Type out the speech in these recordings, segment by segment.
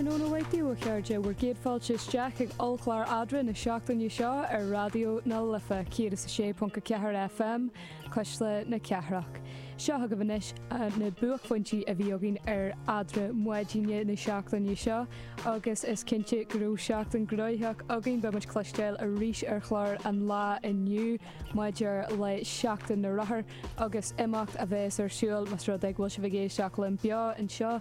Tráthnóna maith daoibh a chairde bhur gcéad fáilte isteach ag ollchlár Eadra na seachtaine seo ar Raidió na Life 106.4 FM, Cuisle na Cathrach. Seo chugaibh anois na buaicphointí a bhí againn ar eadra maidine na seachtaine seo agus is cinnte go raibh seachtain gnóitheach againn. Beidh muid ag cloisteáil arís ar chlár an lá inniu maidir le Seachtain na Rothar agus imeacht a bheas ar siúl más rud é go bhfuil sibh ag éisteacht linn beo anseo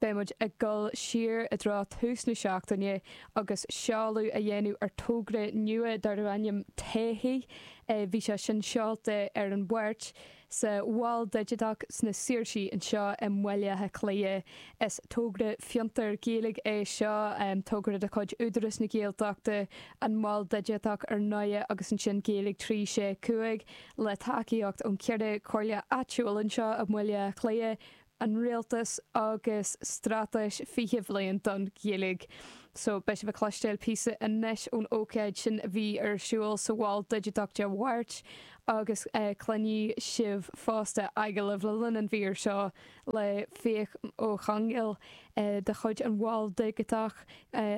Beidh muid ag dul siar i dtreo tús na seachtaine agus seoladh a dhéanamh ar togra nua darb ainm 'Todhchaí' Bhí sé sin seolta ar an Mháirt sa Mhol Digiteach sna Saoirsí anseo i mBaile Átha Cliath. Is togra fiontair Gaeilge é seo, togra de chuid Údarás na Gaeltachta, an Mol Digiteach ar ndóigh agus ansin Gaeilge 365 le tacaíocht ón cheithre comhairle áitiúil anseo i mBaile Átha Cliath. an Rialtais agus Straitéis 20 Bhliain don Ghaeilg. So, beidh sibh ag cloistéil píosa anois ón ócáid sin a bhí ar siúl sa Mhol Digiteach Dé Mháirt agus cluinfidh sibh fosta agallamh le linn an mhír seo le Fiach Ó Conghaile de chuid an Mhoil Dhigiteach,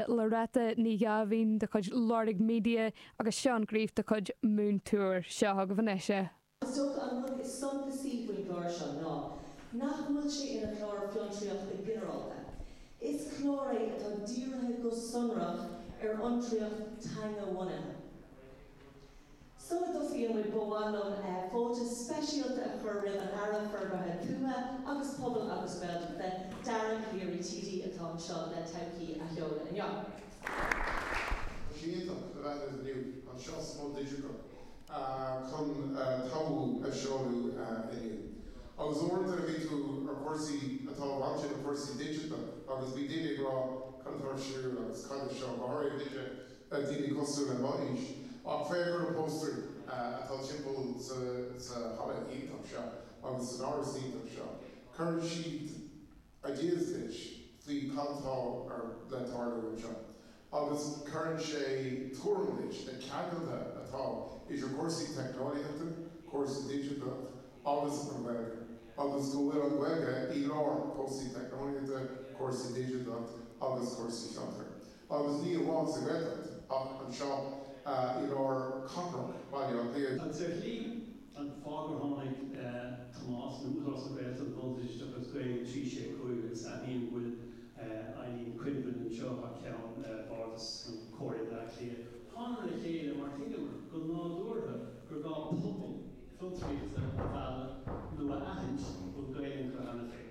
Loretta Ní Ghabháin de chuid Lorg Media agus Seán Greif de chuid Moontour. Seo chugaibh anois iad. Is dócha an rud is suntasaí faoin gclár seo ná nach bhfuil sé ina chlár fiontraíochta ginearálta. Is clár é atá dírithe go sonrach ar fhiontraíocht teanga-bhunaithe. Sula dtosaíonn muid ba mhaith liom fáilte speisialta a chur roimh an Aire Forbartha Tuaithe agus Pobail agus Gaeltachta, Dara Calleary TD, atá anseo le Todhchaí a sheoladh inniu. Tá sé iontach a bheith ar an fhliú anseo sa Mol Digiteach. chun Todhchaí a sheoladh inniu. Agus uaireanta nuair a bhí tú ar chúrsaí atá bainte le cúrsaí digiteacha agus bhí daoine ag rá cad atá ar siúl agus cad é seo, go háirithe duine, daoine cosúil le mo aois, ach féach ar na póstaerí atá timpeall sa halla iontach seo agus san áras iontach seo. Cuireann siad. ideas faoi cad atá le tarlú anseo agus cuireann sé tuairim leis na ceangailthe atá idir cúrsaí teicneolaíochta, cúrsaí digiteacha agus an Ghaeilge, agus go bhfuil an Ghaeilge i lár cúrsaí teicneolaíochta, cúrsaí digiteacha agus cúrsaí fiontar. agus ní amháin sa Ghaeltacht ach anseo i lár cathrach Bhaile Átha Cliath. Agus sin an fáth gur tháinig Tomás ó Údarás na Gaeltachta, don oideachas Gaeilge trí sé cúig agus admhaím go bhfuil Eileen Quinlivan anseo thar ceann Bhardas Chomhairle Bhaile Átha Cliath, thánamar le chéile mar thuigeamar go nádúrtha gur gá pobal fiontraíochta a mhealladh nó a aithint a bhfuil Gaeil iontu cheana féin.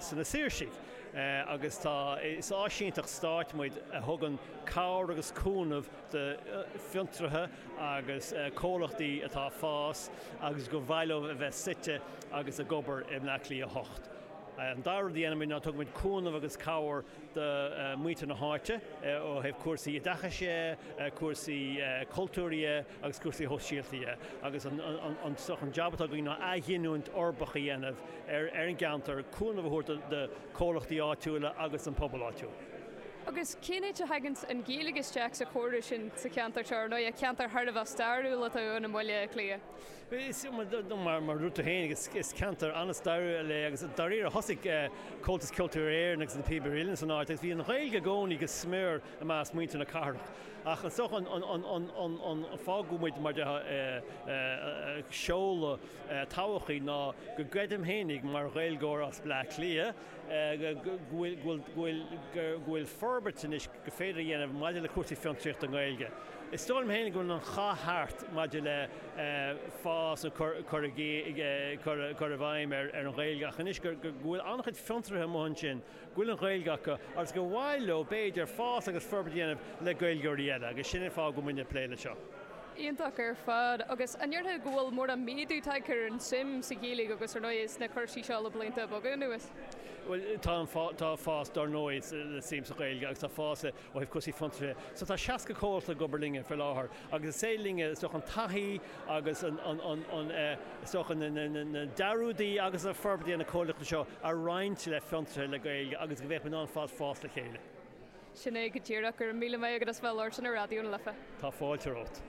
sna Saoirsí agus tá, is áisínteacht stáit muid a thugann cabhair agus cúnamh do fhiontraithe agus comhlachtaí atá ag fás agus gur mhaith leo a bheith suite agus ag obair i mBleá Cliath a 8. An dara rud a dhéanann muid ná tugann muid cúnamh agus cabhair do mhuintir na háite ó thaobh cúrsaí oideachais dhe, cúrsaí cultúir dhe, agus cúrsaí sóisialta dhe, agus an jab atá againn ná athghiniúint uirbeach a dhéanamh ar an gceantar, cúnamh a thabhairt do chomhlachtaí áitiúla agus don phobal áitiúil. Agus cén áit a thagann an Ghaeilge isteach sa chóras sin sa cheantar seo, ar ndóighe, ceantar thar a bheith stairiúil atá ann i mBaile Átha Cliath? Mar a dúirt tú féin, is ceantar an-stairiúil é agus dáiríre thosaigh Comhaltas Ceoltóirí Éireann agus Na Píobairí Uilleann san áit agus bhí an Ghaeilge i gcónaí go smior i measc muintir na cathrach. Ach is dócha an fáth go bhfuil muid, mar dhea, ag seoladh todhchaí ná go gcreidim féinig, mar Ghaeilgeoir as Bleá Cliath, go bhfuil forbairt anois gur féidir a dhéanamh maidir le cúrsaí fiontraíochta i nGaeilge. Is dóigh liom féinig go bhfuil an cath thart maidir le fás nó cur i bhfeidhm ar an nGaeilge ach anois go bhfuil an-chuid fiontraithe amuigh ansin go bhfuil an Ghaeilge acu agus gur mhaith leo, b'fhéidir, fás agus forbairt a dhéanamh le Gaeilgeoirí eile agus sin an fáth go bhfuil muidne ag plé leis seo. Iontach ar fad. Agus an ndéarfá go bhfuil mórán méadú tagtha ar an tsuim sa Ghaeilge agus, ar ndóigh, sna cúrsaí seo le blianta beaga anuas? Bhuel, tá fás, dar ndóigh, le suim sa Ghaeilge agus tá fás le ó thaobh cúrsaí fiontraithe, so tá 60 comhlacht ag obair linne faoi láthair agus is suim linne, is dócha, an taithí agus an, is dócha, na dearúid agus an forbairt a dhéanann na comhlachtaí seo a roinnt le fiontraithe le Gaeilge agus go mbeadh muid in ann ar fad fás le chéile. Sin é go díreach. Go raibh míle maith agat as bheith ag labhairt linn ar Raidió na Life. Tá fáilte romhat.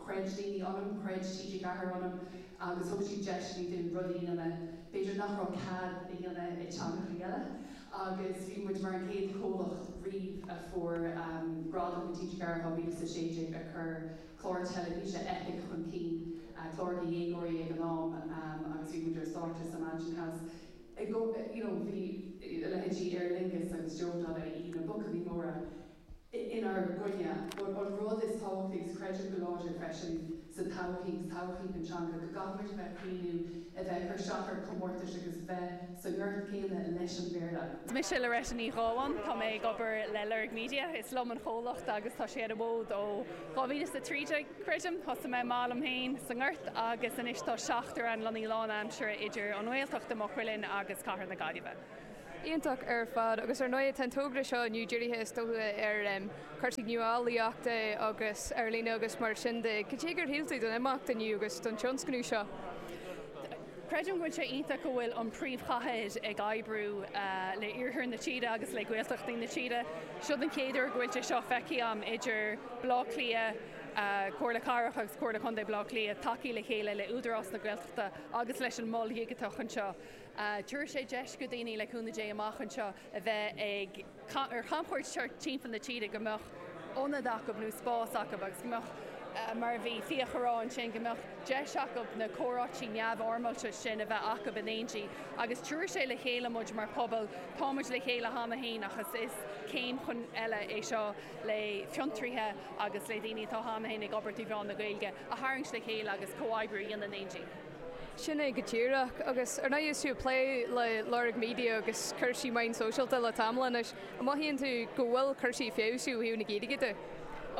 chreid daoine ionam, chreid TG4 ionam. agus thug siad deiseanna dúinn rudaí a dhéanamh b'fhéidir nach raibh cead a dhéanamh i dteangachaí eile agus bhí muid mar an chéad chomhlacht riamh a fuair gradam i TG4 2016 ag cur clár teilifíse epic chun cinn, clár do dhéagóirí ag an am agus bhí muid ar stáitse sa Mansion House you know bhí a leithéidí Aer Lingus agus Joe Donnelly, na buachaillí móra. inár gcoinne. An rud is tábhachtaí, agus creidim go láidir freisin sa todhchaí, sa todhchaí don teanga, go gcaithfidh muid a bheith ag cur chun cinn, a bheith ag cur isteach ar chomórtais agus bheith sa ngort céanna leis an Bhéarla. Mise Loretta Ní Ghabháin, tá mé ag obair le Lorg Media, is liom an chomhlacht agus tá sé ar an bhfód ó dhá mhíle is a trí déag, creidim. Thosaigh mé amach liom féin sa ngort agus anois tá seachtar againn lonnaithe lánaimseartha idir an nGaeltacht i Maigh Cuilinn agus cathair na Gaillimhe. Iontach ar fad, agus ar ndóigh tá an togra seo inniu dírithe is dócha ar chúrsaí nuálaíochta agus ar líne agus mar sin de. Cad é gur shíl tú den imeacht inniu agus den tionscnamh seo? Creidim go bhfuil sé iontach go bhfuil an príomhchathair ag oibriú le iarthar na tíre agus le Gaeltachtaí na tíre. Seo an chéad uair go bhfuil sé seo feicthe agam idir Baile Átha Cliath, Comhairle Cathrach agus Comhairle Contae Bhaile Átha Cliath ag tacú le chéile le Údarás na Gaeltachta agus leis an Mol Dhigiteach anseo. Tabharfaidh sé deis go daoine, le cúnamh Dé, amach anseo a bheith ag ar chamchuairt thart timpeall na tíre, go mbeadh ionad acub nó spás acub agus go mbeadh, mar a bhí Fiach a rá ansin, go mbeadh deis acub na comhráití neamhfhoirmeálta sin a bheith acub in éindí. Agus tabharfaidh sé le chéile muid mar pobal, tá muid le chéile cheana féin ach is is céim chun eile é seo le fiontraíthe agus le daoine atá cheana féin ag obair trí mheán na Gaeilge a tharraingt le chéile agus comhoibriú a dhéanamh in éindí. Sin é go díreach, agus ar ndóigh is tú ag plé le Lorg Media agus cúrsaí meán sóisialta le tamall anois, an mothaíonn tú go bhfuil cúrsaí ag feabhsú ó thaobh na Gaeilge de?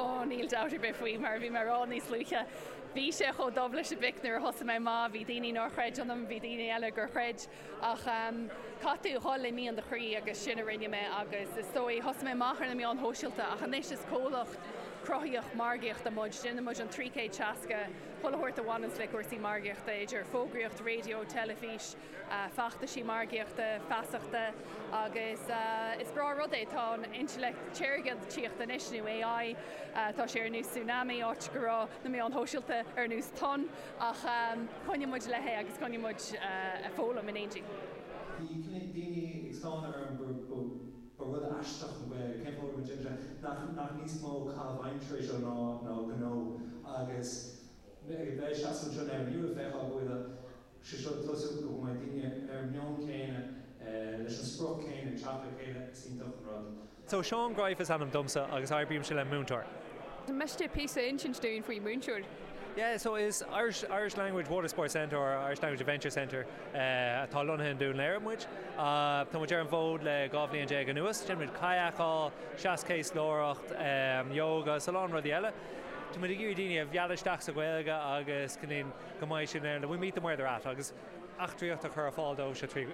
Ó, níl dabht ar bith faoi, mar a bhí mé a rá níos luaithe, bhí sé chomh dubh leis an bpic nuair a thosaigh mé, mar bhí daoine nár chreid ionam, bhí daoine eile gur chreid. Ach caithfidh tú a dhul i mian do chroí agus sin a rinne mé agus is dóigh, thosaigh mé amach ar na meáin shóisialta ach anois is comhlacht cruthaíoch margaíochta muid, déanann muid an 360 chuile shórt a bhaineanns le cúrsaí margaíochta, idir fógraíocht raidió, teilifís, feachtaisí margaíochta, feasachta agus is breá rud é, tá an intleacht shaorga ag tíocht anois nó AI, tá sé ar nós tsunami áit go raibh na meáin shóisialta ar nós tonn. Ach coinneoidh muid léi agus coinneoidh muid ag foghlaim in éindí. Bhí cnoic daoine ag stánadh orm ba rud aisteach an Ghaeilge, cén fáth a raibh muid déanta ar nach níos mó caitheamh aimsire é seo ná gnó agus a bheith ag seasamh anseo inniu ag feiceáil go bhfuil sé seo ag tosú go mbeidh daoine ar an meon céanna leis an sprioc céanna ag teacht le chéile is iontach an rud. So, Seán Greif is ainm domsa agus oibrímse le Moontour. miste píosa a insint dúinn faoi Moontour? Yeah, so is Irish, Irish language water sports centre or Irish language adventure centre atá lonnaithe in Dún Laoghaire muid. Tá muid ar an bhfód le dhá bhliain déag anuas. Déanann muid kayakáil, seaschéaslóireacht, yoga, 's a lán rudaí eile. Tá muid ag iarraidh daoine a mhealladh isteach sa Ghaeilge agus go ndéanann, go mbeidh siad in ann, we meet them where they're at agus eachtraíocht a chur ar fáil dóibh seo trí,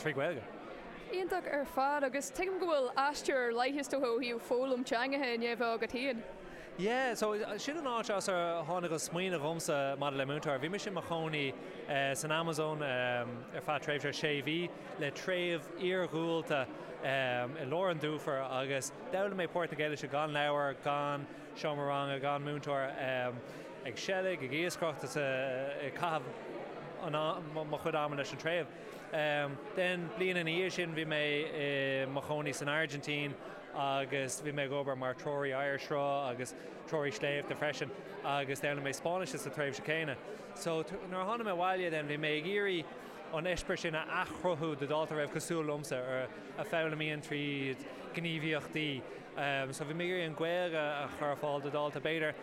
trí Ghaeilge. Iontach ar fad, agus tuigim go bhfuil aistear ar leith, is dócha, ó thaobh foghlaim teangacha i ndiaidh a bheith agat féin. Yeah, so sin an áit as ar tháinig an smaoineamh dhomsa maidir le Moontour. Bhí mise i mo chónaí san Amazon ar feadh tréimhse sé mhí le treibh iargúlta i lár an dufair agus d'fhoghlaim mé Portaingéilise gan leabhar, gan seomra ranga, gan múinteoir, ag seilg, ag iascaireacht, ag caitheamh mo chuid ama leis an treibh. An bhliain ina dhiaidh sin bhí mé i mo chónaí san Airgintín agus bhí mé ag obair mar threoraí oighearshruth agus treoraí sléibhte freisin agus d'fhoghlaim mé Spáinnis sa tréimhse céanna. So nuair a tháinig mé abhaile then bhí mé ag iarraidh an eispéireas sin a athchruthú do dhalta a raibh cosúil liomsa, a foghlaimíonn tríd gníomhaíochtaí. So bhí mé ag iarraidh an Ghaeilge a chur ar fáil do dhalta b'fhéidir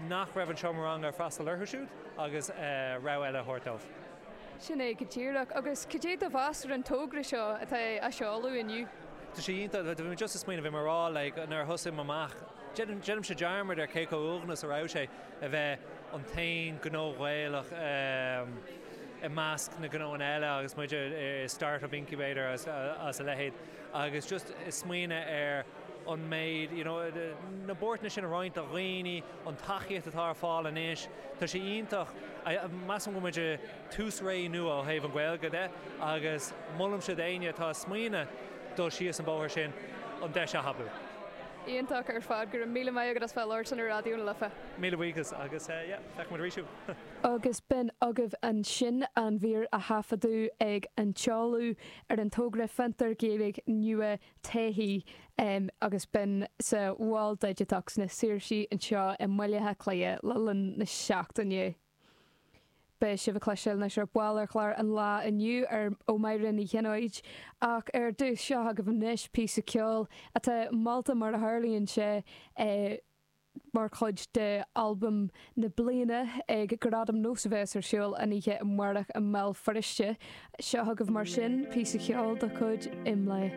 nach raibh an seomra ranga ag freastal orthu siúd agus rogha eile a thabhairt dóibh. Sin é go díreach. Agus cad é do mheas ar an togra seo atá á seoladh inniu? Tá sé iontach. Bhí mé just ag smaoineamh mar a bheadh nuair a thosaigh mé amach, déanaimse dearmad ar cé chomh uaigneach is a raibh sé a bheith an t-aon gnó Gaelach i measc na gnóanna eile agus muid i start-up incubator agus a leithéid agus just ag smaoineamh ar an méid, you know, na buairteanna sin a roinnt le daoine, an tacaíocht atá ar fáil anois, tá sé iontach, measaim go bhfuil muid i tús ré nua ó thaobh an Ghaeilge de agus molaimse d'éinne atá ag smaoineadh dul síos an bóthar sin an deis a thapú. Iontach ar fad, go raibh míle maith agat as bheith labhairt linn ar Raidió na Life. Míle buíochas agus yeah, feicfidh muid arís thú! Agus b'in agaibh ansin an mhír a thaifeadadh ag an seoladh ar an togra Fiontar Gaeilge nua BÁC agus b'in sa Mhol Digiteach sna Saoirsí anseo i mBaile Átha Cliath le linn na seachtaine. Beidh sibh ag cloisteáil anois ar ball ar chlár an lae inniu ó Mháire Ní Ghionnáith ach ar dtús seo agaibh anois píosa ceoil atá molta mar a tharlaíonn sé mar chuid d'albam na bliana ag Gradaim NÓS a bheas ar siúl an oíche amárach i mBéal Feirste. Seo agaibh mar sin píosa ceoil de chuid Imlé.